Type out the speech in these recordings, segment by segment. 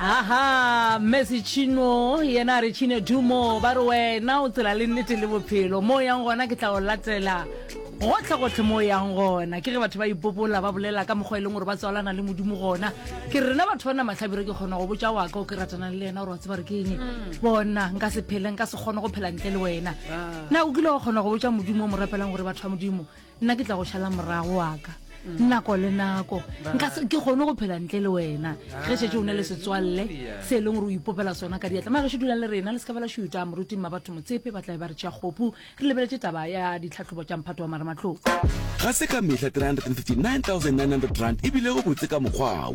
aha mmesi chino yena a re chine dumo ba re wena o tsela le nnete le bophelo mo o yang gona ke tla o latela gotlhegotlhe mo o yang gona ke ge batho ba ipopola ba bolela ka mokgwa e leng gore ba tswalana le modimo gona ke rena batho ba na matlhabire ke kgona go botsa waka o ke ratanang le yena gore wa tseba re ke eng mm. bona nka se phele nka se kgone go phela ntle le wena ah. na o kile wa kgona go botsa modimo o mo rapelang gore batho ba modimo nna ke tla go šala morago wa ka mm. nako le nako nka ke kgone go phela ntle le wena ge šetse o ne le setswalle se e leng gore o ipopela sona ka diatla mare ge se dulang le rena le se ka bela šuta moruting ma batho motsepe ba tlabe ba re tšea kgopu re lebeletse taba ya ditlhatlhobo tša mphato wa marematlong ga se ka mehla 359900 rand e bilego botse ka mokgwao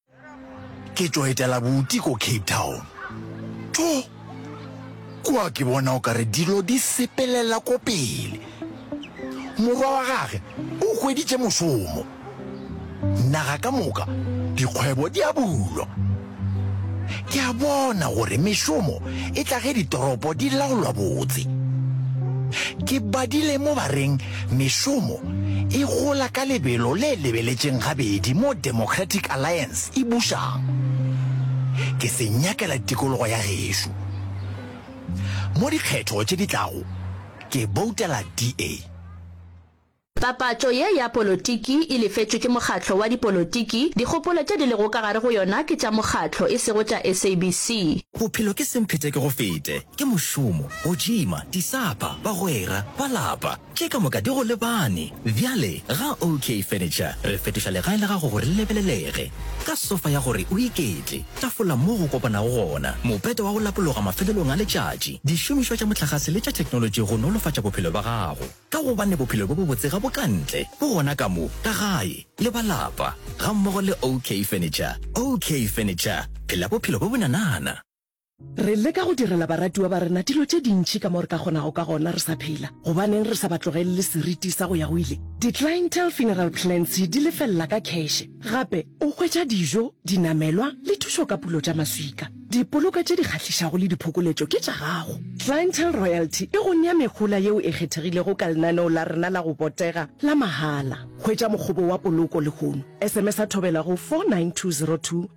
Ke tšo etela buti ko Cape Town. Tho! Kua ke bona o ka re dilo di sepelela ko pele. Morwa wa gage o hweditše mošomo. Naga ka moka dikgwebo di a bulwa. Ke a bona gore mešomo e tla ge ditoropo di laolwa botse. Ke badile mo ba reng Mešomo e gola ka lebelo le lebeletšeng gabedi mo Democratic Alliance e bušang. Ke se nyakela tikologo ya gešo. Mo dikgetho tše di tlago, ke boutela DA. Papatšo ye ya polotiki e lefetšwe ke mokgatlo wa dipolotiki, dikgopolo tše di lego ka gare go yona ke tša mokgatlo, e sego tša SABC. Bophelo ke semphete ke go fete. Ke mošomo, go tšima, disapa, bagwera, ba lapa, tše ka moka di go lebane. Bjale ga OK Furniture re fetoša legae la gago gore le lebelelege, ka sofa ya gore o iketle, tafola moo go kopanago gona, mopete wa go lapologa mafelelong a letšatši, dišomišwa tša mohlagase le tša theknolotši go nolofatša bophelo bja gago, ka gobane bophelo bjo bobotse ga bo ka ntle, bo gona ka mo, ka gae le ba lapa, gammogo le OK Furniture. OK Furniture, phela bophelo bjo bonanana! Re leka go direla baratiwa ba rena dilo tše dintši ka mo re ka kgonago ka gona re sa phela. Gobaneng re sa ba tlogelele seriti sa go ya go ile? Di-clientele funeral plans di lefelela ka kheshe. Gape o hwetša dijo, dinamelwa le thušo ka pulo tša maswika. Dipoloko tše di kgahlišago le diphokoletšo ke tša gago. Clientele Royalty e go nea mehola yeo e kgethegilego ka lenaneo la rena la go botega la mahala. Hwetša mokgobo wa poloko lehono. SMS-a thobela go 49202.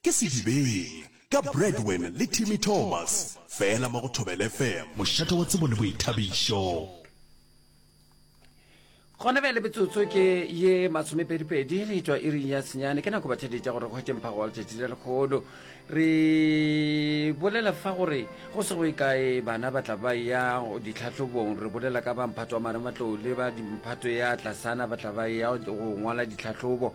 Ke Sedibeng ka Bradwin le Timmy Thomas fela mo go Thobela FM. Mošate wa tsebo le boithabišo. Gona bjale metsotso ke ye masomepedipedi re etšwa iring ya senyane ke nako bathedi tša gore go hwetše mphago wa letšatši le lekgolo re bolela fa gore go se go e kae bana ba tla ba ya ditlhahlobong re bolela ka ba mphato wa marematlou le ba dimphato ya tlasana ba tla ba ya go ngwala ditlhahlobo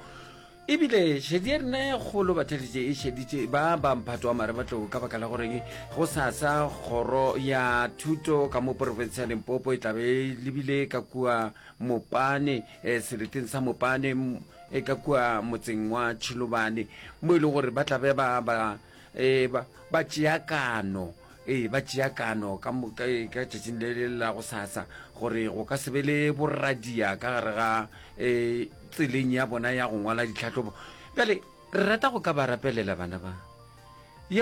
Ebile šedi ya rena ya kgolo batheletše e šeditše ba ba mphato wa marebatlou ka baka la goreng go sasa kgoro ya thuto ka mo porofense ya limpopo e tlabe e lebile ka kua mopane eh, seleteng sa mopane e ka kua motseng wa tšhilobane mo e leng gore ba tlabe ba ba eh, ba tšeakano Ee, ba tšea kano ka moka ee, ka tšatšing le le la go sasa gore go ka se be le boradia ka gare ga ee, tseleng ya bona ya go ngwala ditlhahlobo. Bjale re rata go ka ba rapelela bana ba ye